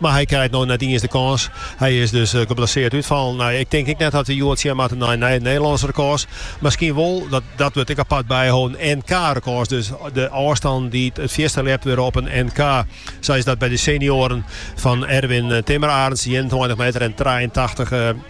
Mar hy krijt no net iens de kâns. Hy is dus geblessearre útfallen. Nei, ik tink ek net dat we hjoed sjen moatte nei nije Nederlânske rekôrs. Miskien wol, dat wurdt ek apart byholden, in NK-rekôrs dus. De ôfstannen dy't it fierste leapt wurde op in NK, sa is dat by de senioaren fan Erwin Timmerarends, ienentweintich meter en trijeentachtich.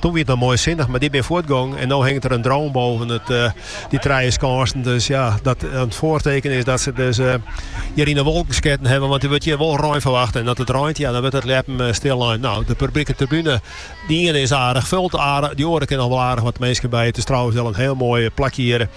Toen wie it noch moai sinnich, mar dy bin fuortgong en no hinget der in drone boven út dy trije skânsen. Dus ja, dat dat it foartekenen is dat se dus hjir yn de wolken sketten hawwe, want der wurdt hjir wol rein ferwachte. En dat it reint, ja, dan wurdt it leappen stil lein. No, de publike tribune, dy iene is aardich fold, dy oare kin noch wol aardich wat minsken by. It is trouwens wol in hiel moai plakje hjir.